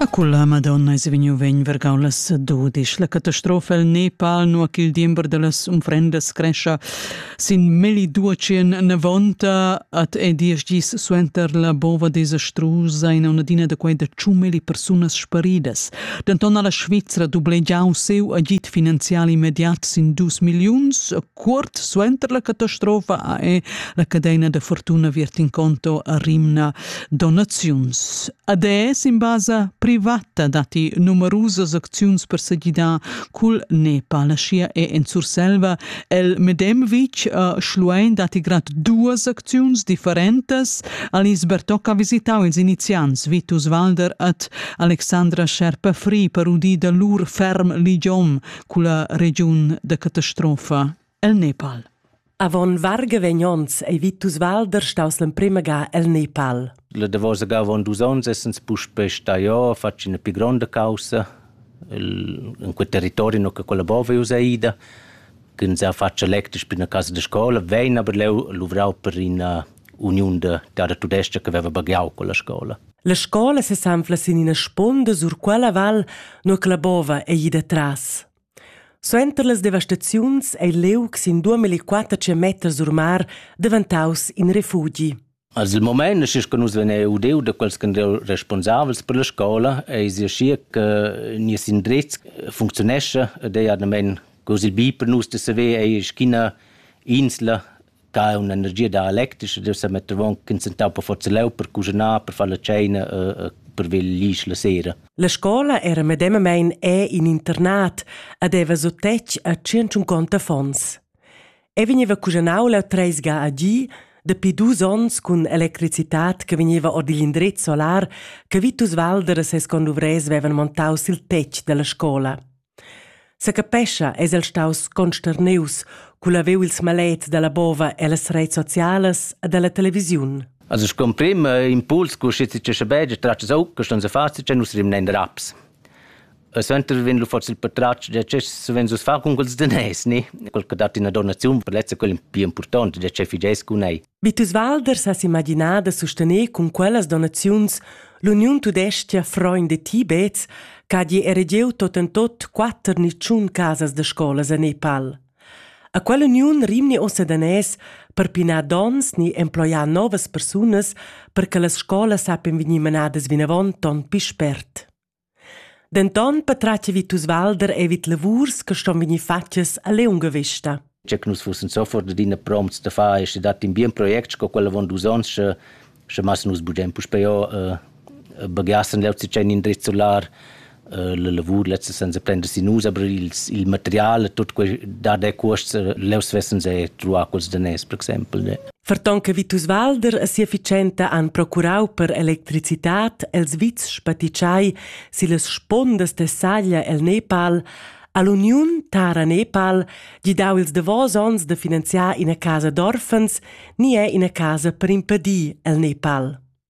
A culla Madonna es vegniu vegn vargau las dudisch. La catastrofa el Nepal, nua ch'il diember dallas unfrendas crescha sin melli duecien navonta at è diesch gis suenter la bova desastrusa in un'adina da quei da ciumeli persunas sparidas. Denton ha la Svizra dublegiau seu agid finanzial immediat sin dus milliuns, Cuort suenter la catastrofa ha la cadena da fortuna Virtinconto a Rimna donaziuns. ADS in basa privata datti numerusas acziuns per se gidar cul Nepal. Sia è en Surselva. El Medemvic a Schluein datti grad duas acziuns differentas. Alice Bertoc ha visitau ils iniziants Vitus Walder at Alexandra Scherpa-Fri per udir da lur ferm ligiom culla regiun da catastrofa el Nepal. Avon varga vegnons ei Vitus Walder staus l'emprema ga el Nepal. La davosa ga avon dus onns essens puspe staiò, facci una più grande causa in quel territorio che collabora us Aida, che non sa faccia lectus per una casa di scuola, vegn aber leu luvrau per una uniun da garda tudesca che veva bagiau con la scola. La scola sesanfla sin ina sponda sur quella val, nur che la bova ei ida tras. Suenter las devastaziuns ei Leuc sin 2400 meter sur mar daventaus in refugi. Also il moment è che nus veniamo udeu da quels che sono responsabili per la scuola e si schier che nies indrizz funzionesce, der ja nemen così bi per nus de saver è schina insla da un'energia dialectisca deve sa metter avon consentau per forza leu per cuginar per far la tscheina e per veglisch la sera la scola era medemamein è in internat e deva so tec a tschient affons e vegniva cuginau leu treis ga a gi dapi dus onns cun electricitat che vegniva ord igl indrez solar che Vitus Walder e ses conduvrers vevan montau sil tetg dalla scola Secapescha eis el staus consternius cul haver ils malets dalla bova ellas reits socialas e dalla televisiun. Also scomprimm impuls cu schi ti schabegia tratgs au che ston se facit che nus rimnen raps. E suenter vin lu forse il patratg de ce sven sus fa con quels de nes ni quel che dat ina donazione per lezza quel più importante de ce figes cu nei. Vitus Walder sa s'imaginar da sustener cun quellas donaziuns l'uniun tudestga Freund de Tibets ch'ha gi eregieu tot en tot quatter nitschun casas da scolas a Nepal. A quell'uniun rimni ossa danès per pinar dons ni emploiar novas persunas per che las scolas sappen vegnir menadas vinavon ton pi spert. Denton patratgevi tuts Walder e vid lavurs che ston vegnir fatgas a liunga vesta. Che nus fussen sofort adina prompts da far e sche dat in bien project sco quel avon dus onns, sche, sche mas nus bugen puspei uh, baghiassen leu tschein indriz solar uh, la lavur lezza senza prender sin nus, aber il, il material e tut quei da de cuosts uh, leu svessens e truar quels da nes, per exempel. Ne. Ferton che Vitus Walder e sia fitschenta han procurau per electricitat els vits spaticciai sillas spondas de saglia el Nepal, ha l'uniun Tara Nepal gidau ils davos onns da finanziar ina casa d'orfens ni è ina casa per impedir el Nepal.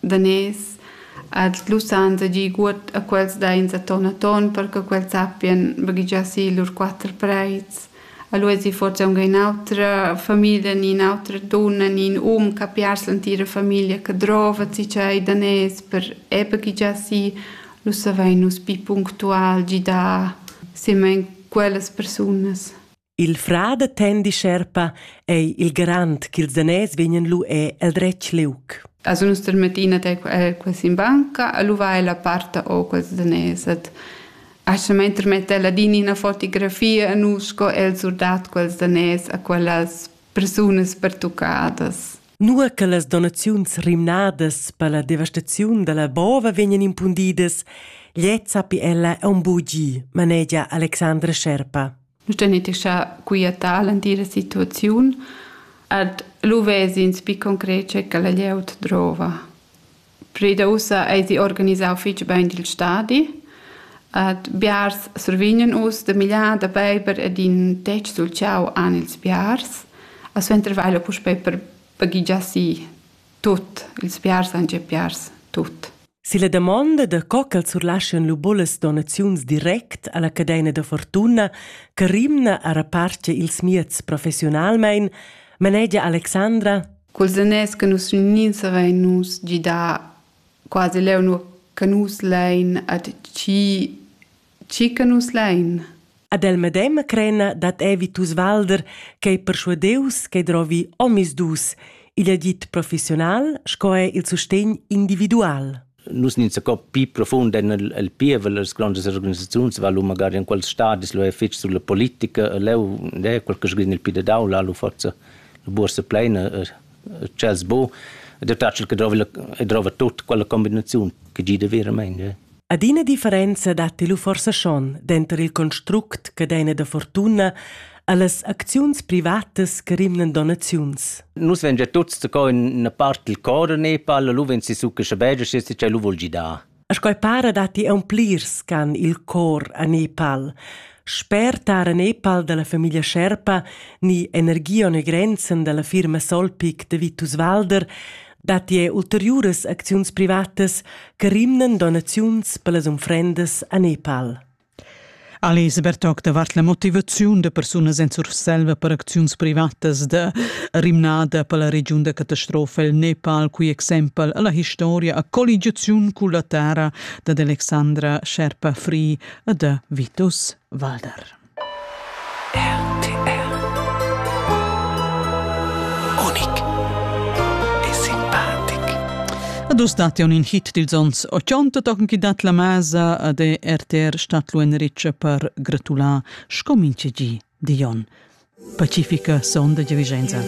daners ad sblussan tgi guot a quels dains atton atton per che quels sappien baghegiar si lur quatter preits. Allura esi forsa aunc in'autra famiglia ni in'autra dunna ni in um che ha piars l'entira famiglia che drova si tschei daners per e baghegiar si, lu savein nus pi punctual gidar semen quellas persunas. Il fra da tendi sherpa ei il garant ch'ils daners vegnan lu e el dretg liug. A sun nus termettina te quasi in banca, a lu vai la part o quels daners. Et Ascha mein termetta ladin ina fotografia a nus sco el surdat quels daners a quellas persunas pertuccadas. Nua che las donaziuns rimnadas per la devastaziun dalla bova vegnan impundidas, gliez sappi ella aunc bugi, manegia Alexandra Sherpa. Nus tenetischa quietà l'entira situaziun ed lu ves'ins pi concret che la glieud drova. Pir da ussa eisi organisau fetg bein il stadi ed biars survegnan uss da migliar da beiber ed in tec sul ciau han ils biars. A suenter vai puspei per baghegiar si tut. Ils biars han già biars tut. Silla damonda da co ch'els surlaschian lu bunas donaziuns direct alla cadeina da fortuna che rimna a reparter ils mieds professionalmein, manegia Alexandra Cul zaners che nus unins havein nus gidà quasi leu, nua che nus lein a tgi Tgi che nus lein. Ad el medema crena dat Evitus Walder ch'ei perschuadius che drovi omisdus. Igl agit professional sco è il sustegn individual. Nus nin co pi profund en el, el pievel las grandes organisaziuns va lu magari in quels stadis lu è fitg sulla politica leu de quel che sgrin il pi de daula lu forza la bursa pleina ch'els bu ed tatschel che drova e drova tut quella combinaziun che gida veramein. Ja. Adina differenza datti lu forsa schon denter il construct che deina da fortuna allas acziuns privatas che rimnan donaziuns. Nus vegn ja tuts da co in una part del cor a Nepal, lu vegn si su che sche beige, se lu vol gidar. Sco para datti aunplirs ch'han il cor a Nepal. Sper tar a Nepal dalla famiglia Sherpa ni Energia e Grenzen dalla firma Solpic de Vitus Walder datti er ulteriuras acziuns privatas che rimnan donaziuns per las unfrendas a Nepal. Elisabeth toc davart la motivaziun da persunas en Surselva per acziuns privatas da rimnada per la regiun da catastrofa el Nepal, qui exempel la historia a colligiaziun cun la terra da Alexandra Sherpa-Free e da Vitus Walder. RTR Unic e simpatic Ad us datti un in hit dils ons 80 tochen chi dat la masa de RTR Stadtlo en Riccia per gratular sco minchegi Dion. Pacifica sonda di Vicenza.